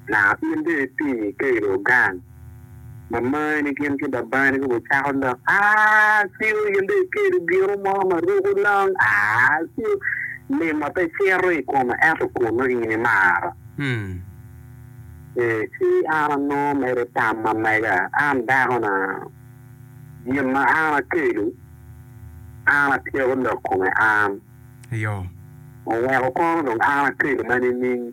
Naka in bene ipinyi ka ilo gang ma mani gin ki babani gucako lok aciu in dong ikelo gino mo ma ruko long aciu lima pe cito i koma ento kunnu in imara. Ee, ci an anongo mere tam ma mega, An dakona, gin ma an akelo, an atyeko lok kome an, oweko kono dong an akelo ma nining?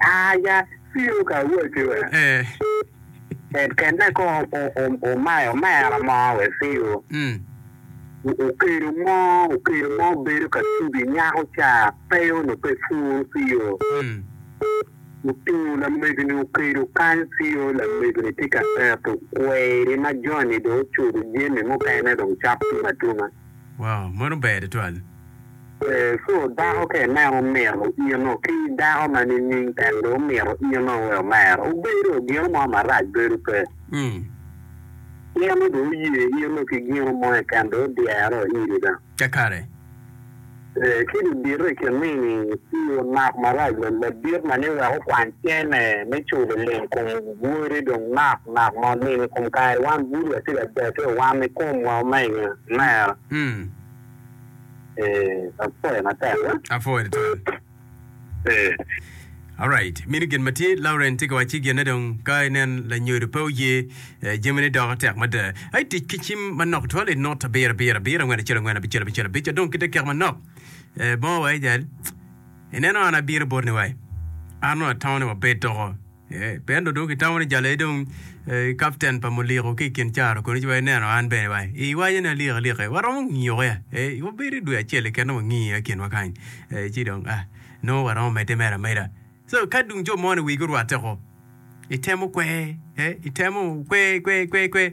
Aya, Ciro ka awoti we? Ee. Kenne ko omayo omera mo we Ciro. Okedo mo, okedo mo bedo ka tubi nyako ca pe onongo pe pworo Ciro. Otingo lamego-ni okedo kany Ciro, lamego-ni tye ka eto kweri ma joni dong ocudo jami mukene dong cok tum atuma. Wow, meno ber tutwal. Yecu odoko ka ineno omiro ino ki dako ma nining tek dong omiro ino wek omer? Obedo gino mo marac bedo pe. Ino dong oye ino ki gino mo keken dong odyero iri da. Kakare. Ee, ki dong bite i kin nini i onok marac ladit ma ni wek okwany cene me culo lim kom wode dong nok nok mo lim i kom kare wan bulu wa tye ka deke wa ni komwa omege, omera. Eh, apwoyo matek. Apwoyo tutwal. Eh. Alright, mini gin matye Lauren tye ka wacci gin ne dong ka inen lanyodo pe oye eh, jami ne doko tek mada. Ai tic ki cim manok twal i not abiro abiro abiro angwen acel angwen abicel abicel abic adong ki dakika manok. Eh, bongo wa ijal. Ineno an abino bot ni wai. An nongo atamo ni wabed doko. Pien-nu dong kitamo ni jalo aye dong kapten pa muliko ki i kin caro koni ci wa ineno an bene wa iwaco ni alik alike waromo ngiyoke wabedo i dwe acel keken wangiyo i kinwa kany ci dong nongo waromo medde mere ameda so ka dong jo moni wigi orwatte ko itemo kwer itemo kwer kwer kwer kwer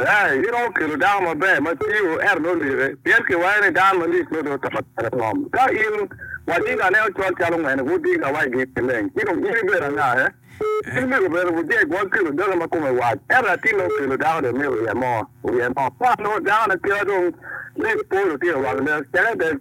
Ee, giromo kelo dako maber ma tiyo, ento nongo like, pien kiwayo ni dano malit nongo dong oto tere kom. Ka in wadigane ocol calo ngene, wudiga wa i gin maleng, ci dong in ibedo anga? Ee, in myero bene wujeg wa kelo dano ma kome wac. Ento latin nongo kelo dako dong myero oryem-o, oryem-o. Ka nongo dakone kite dong lit pol otito wang lek, ceke dek.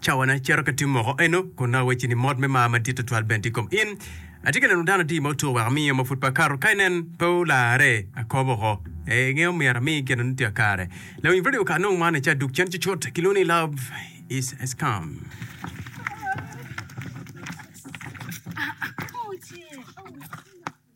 Cawana cito ka tum moko eno, kun nongo awecci ni mot me mar madit tutwal bene tye i kom in. Atye ka neno dano adi ma otur wek amiyo ma pud pe akato, ka inen pe olarre, akobo oko. Ee, ingeyo myero amiyi gin ma nongo tye ka kare. Lawiny redio okato nongo man i cawa duk cen cucut, kilwongo ni Love Is a Scam.